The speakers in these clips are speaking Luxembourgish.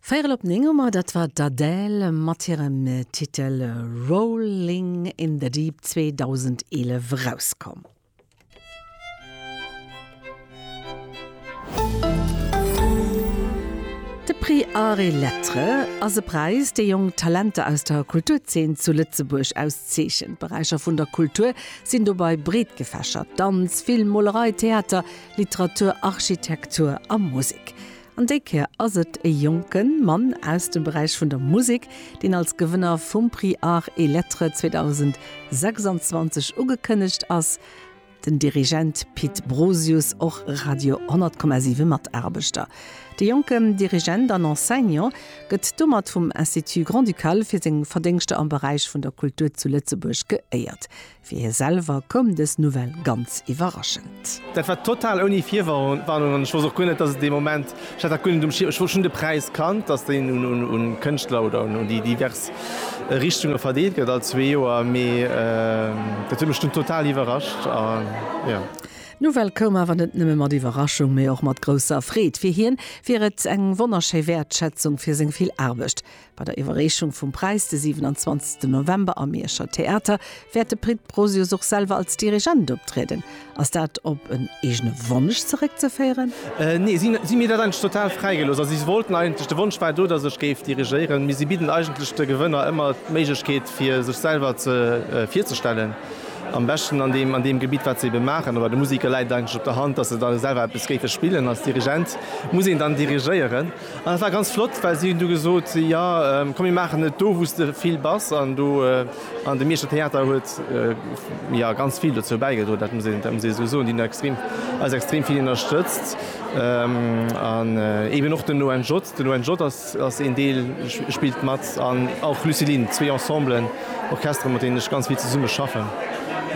Véierel op 9 Auer, dat war d'Adele mat hirem Titel Rolling in the Deep, 2011 erauskomm. De Prix Arts et Lettres ass e Präis, dee jonk Talenter aus der Kulturzeen zu Lëtzebuerg auszeechent. D'Beräicher vun der Kultur sinn dobei breet gefächert, Danz, Film, Molerei, Theater, Literatur, Architektur a Musek. An déi Kéier ass et e jonke Mann aus dem Beräich vun der Musek, deen als Gewënner vum Prix Arts et Lettres 2026 ugekënnegt ass, den Dirigent Pit Brosius, och Radio 10,7 Mataarbechter. De jonke Dirigent an Enseignant gëtt domat vum Institut Grand-Ducal fir seng Verdéngschter am Beräich vun der Kultur zu Lëtzebuerg geéiert. Fir hie selwer koum dës Nouvelle ganz iwwerraschend. Dat war total ouni Virwarnung an ech wosst och guer net, dass et dee Moment, ech hat dat guer net um Schierm, ech wosst, ech hunn de Präis kannt, dass deen un Kënschtler oder un déi divers Richtunge verdeelt gëtt all zwee Joer, mee dat huet mech dunn total iwwerrascht a jo. D'Nouvelle koum awer net nëmme mat Iwwerraschung, mee och mat grousser Freed. Fir hien wier et eng wonnerschéi Wäertschätzung fir seng vill Aarbecht, Bei der Iwwerreechung vum Präis de 27 November am Mierscher Theater wäert de Pit Brosius och selwer als Dirigent optrieden. Ass dat op en eegene Wonsch zeréckzeféieren? Nee, si hu mir dat eigentlech total fräi gelooss. Also si wollten eigentlech, de Wonsch war do, datt ech géif dirigéieren, mee si bidden eigentlech de Gewënner ëmmer d'Méiglechkeet fir sech selwer virzestellen, am beschten an deem an deem Gebitt wat se ebe maachen. Oder de Musiker läit et eigentlech op der Hand, datt se da selwer eppes géife spillen. Als Dirigent muss een dann dirigéieren. An dat war ganz flott, well si hunn du gesot, jo komm mir maachen et do wou s de vill bass an do. An de Mierscher Theater huet jo ganz vill dozou bäigedroen, dat muss een esou soen, déi hunn extrem eis extrem vill ënnerstëtzt an eben och den ONJ. Den ONJ ass een Deel spillt mat an och Lucilin, zwee Ensemblen, Orchestere mat deenen ech ganz vill zesumme schaffen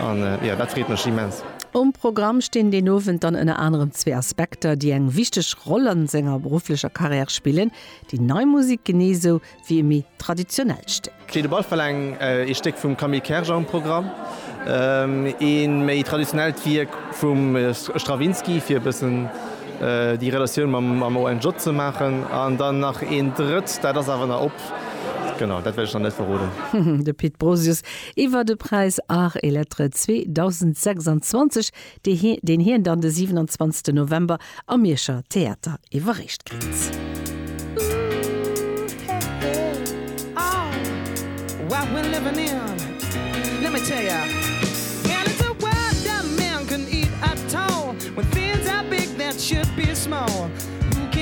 an jo dat freet mech immens. Um Programm stinn deen Owend dann ënner anerem zwee Aspekter, déi eng wichteg Roll a senger berufflecher Carrière spillen, déi nei Musek genee sou wéi e méi traditionellt Stéck. Steet op alle Fall eng ee Stéck vum Camille Kerger um Programm, ee méi traditionellt Wierk vum Stravinsky, fir e bëssen déi Relatioun mam ONJ ze maachen, an dann nach een drëtt, dat ass awer nach op, genau, dat wäert ech nach net verroden. De Pit Brosius iwwer de Präis Art et Lettres 2026, deen hien dann de 27 November am Mierscher Theater iwwerreecht kritt.